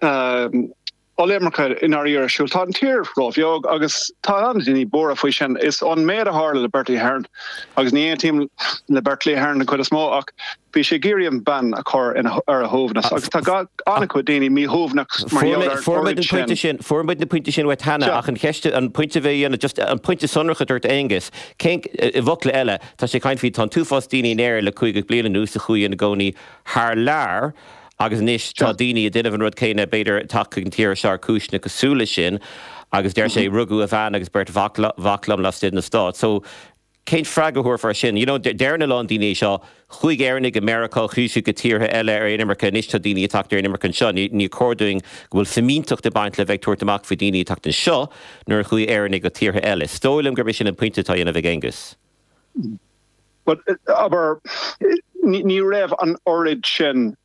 Tá ollimirce i ndáiríre ar siúl. Tá an tír róbheag agus tá an-daoine buartha faoi sin. Is an méid a tharla le Bertie Ahern, agus ní aontaím le Bertie Ahern den chuid is mó, ach bhí sé ag iarraidh an bhean a chur ar a shuaimhneas agus tá an-chuid daoine míshuaimhneach mar gheall ar an oiread sin. Fuair muid na pointí sin uait cheana ach an cheist, an pointe a bhí á dhéanamh, just an pointe sonrach a dúirt Aengus, cén, i bhfocla eile, tá sé ag caint faoi, tá an t-uafás daoine in Éirinn le caoga bliain anuas a chuaigh ina gcónaí thar lear Agus anois tá daoine ag déanamh an rud céanna, b'fhéidir ag teacht chuig an tír seo ar chúiseanna cosúil leis sin. Agus deir sé, rugadh a bhean agus beirt mhac liom laistigh de na Stáit. So, cén freagra a thabharfá ar sin? You know, deireann a lán daoine é seo, chuaigh Éireannaigh go Meiriceá, chuaigh siad go tíortha eile ar inimirce, anois tá daoine ag teacht ar inimirce anseo. Níor chóir dúinn go bhfuil fimínteacht ag baint le bheith ag tabhairt amach faoi daoine ag teacht anseo nuair a chuaigh Éireannaigh go tíortha eile. Is dóigh liom gurb é sin an pointe atá á dhéanamh ag Aengus. Abair, ní raibh an oiread sin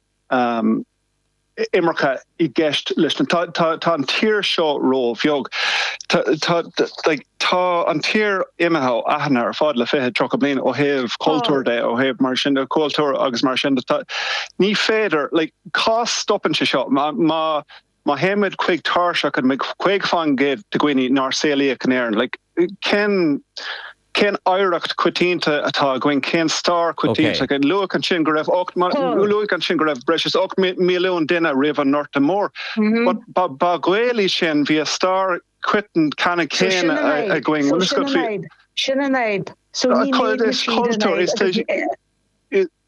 imirce i gceist leis na, tá an tír seo róbheag, tá an tír imithe ó aithne ar fad le fiche, tríocha bliain ó thaobh cultúir de, ó thaobh mar sin de, cultúir agus mar sin de. Ní féidir, cá stopann sé seo? Má théimid chuig tairseach an 50% de dhaoine nár saolaíodh in Éirinn? Cén cén oidhreacht choitianta atá againn? Cén stair choitianta againn? Luadh ansin go raibh 8 luadh ansin go raibh breis is 8 milliún duine roimh an nGorta Mór. Ba Ghaeil iad sin, bhí an stair choiteann chéanna againn. So sin an fhadhb. Sin an fhadhb. So ní léifidh siad an fhadhb.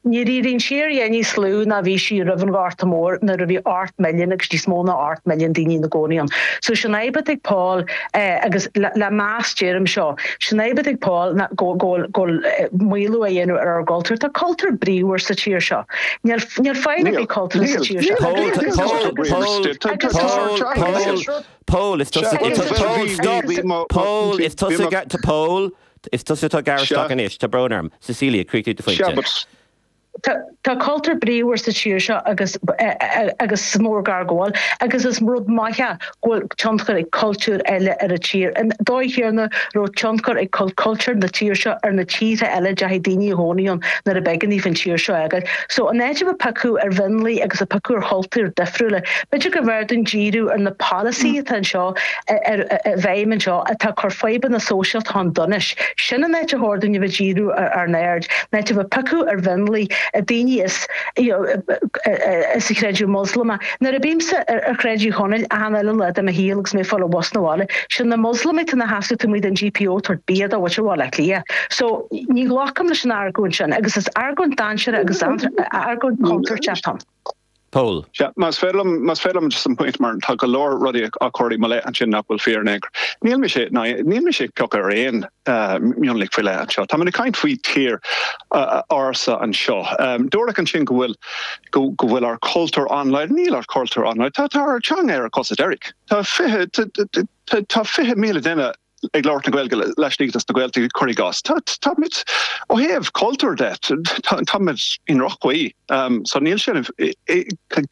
Níor éirigh an tír a dhath níos lú ná bhí sí roimh an Ghorta Mór nuair a bhí 8 milliún agus níos mó ná 8 milliún daoine ina gcónaí ann. So sin an fhadhb atá ag Paul eh agus le meas deirim seo, sin an fhadhb atá ag Paul ná go bhfuil go bhfuil maolú á dhéanamh ar ár gcultúr. Tá cultúr bríomhar sa tír seo. Níl níl caill ar bith Níl, cultúr sa níl, tír seo. níl, Paul, níl cultúr Paul, bríomhar sa Paul, tír. Tá tá tá Paul, tá Paul, níl. Paul, is Sea, tusa, bhuel bhí Paul, bhí stop, bhí mo Paul, is tusa, Paul, T, Is tusa atá ag gearradh isteach anois. Tá brón orm. Cecilia, críochnaigh do Seo, phointe. but. T, Tá cultúr bríomhar sa tír seo agus agus is mór an gar go bhfuil agus is rud maith go bhfuil tionchar ag cultúir eile ar an tír. An dóigh chéanna a raibh tionchar ag cul, cultúr na tír seo ar na tíortha eile a dteachaigh daoine a chónaí ann nuair a b'éigean daofa an tír seo a fhágáil. So in áit a bheith ag piocadh ar mhionlaigh agus ag piocadh ar chultúir difriúla. B'fhéidir gurbh fhearr dúinn díriú ar na polasaithe atá anseo i bhfeidhm anseo atá ag cur fadhbanna sóisialta chun donais. Sin an áit ar chóir dúinn a bheith ag díriú ár n-aird, in áit a bheith ag piocadh ar mhionlaigh, ar dhaoine as an chreideamh Moslamach. Nuair a bímse ar Shráid Uí Chonaill achan uile lá de mo shaol agus mé ag fáil an bhus na bhaile, sin na Moslamaigh atá ina seasamh taobh amuigh den GPO ag tabhairt bia do mhuintir Bhaile Átha Cliath. So, ní ghlacaim leis an argóint sin agus is argóint dainséartha agus argóint contúirteach atá ann. Pól. Sea, más féidir liom, más féidir liom just an pointe mar tá go leor rudaí á chur i mo leith ansin nach bhfuil fíor in aon chor. Níl mise, ná níl mise ag piocadh ar aon mhionlaigh faoi leith anseo. Táim ag caint faoi thír ársa anseo. Dúradh ansin go bhfuil, go bhfuil ár cultúr an-láidir. Níl ár cultúr an-láidir. Tá, tá ár teanga ar a cosa deiridh. Tá fiche, tá fiche míle duine. ag labhairt na Gaeilge laistigh des na Gaeltachtaí, cuir i gcás. Táimid ó thaobh cultúir de, táimid i ndroch-chaoi, so níl sin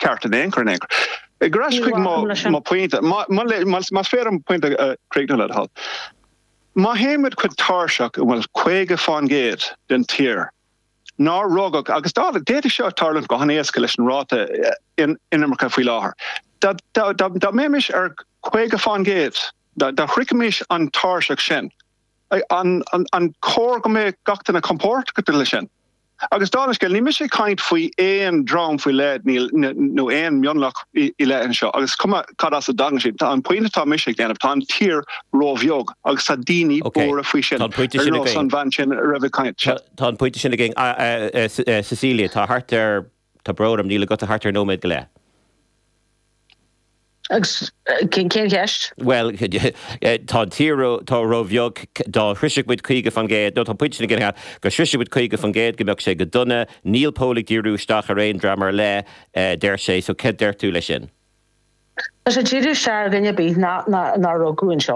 ceart in aon chor in aon chor. Ar ais chuig mo pointe, más féidir liom pointe a chríochnú le do thoil, má théimid chuig tairseach a bhfuil 50% den tír ná rugadh, agus d'fhéadfadh seo a tharlúint go han-éasca leis an ráta inimirce faoi láthair, dá mbeimis ar 50% Dá shroichfimis an tairseach sin, an cóir go mbeadh gach duine compordach leis sin? Agus dála scéil, níl mise ag caint faoi aon dream faoi leith nó aon mhionlach ar leith anseo, agus is cuma cad as a dtagann siad. An pointe atá mise ag déanamh, tá an tír róbheag agus tá daoine buartha faoi sin, ar nós an bhean sin a raibh ag caint. Tá an pointe sin againn. Cecilia, tá thart ar. Tá brón orm, níl agat ach thart ar nóiméad go leith. Agus cén cheist? Bhuel, tá an tír ró-bheag, dá shroisfeadh muid 50%, nó tá pointe na gcinnithe go sroisfidh muid 50% go mbeadh sé go dona. Níl Pól ag díriú isteach ar aon dream ar leith, deir sé, so céard deir tú leis sin? Tá sé ag díriú isteach ar dhuine ar bith nár rugadh anseo.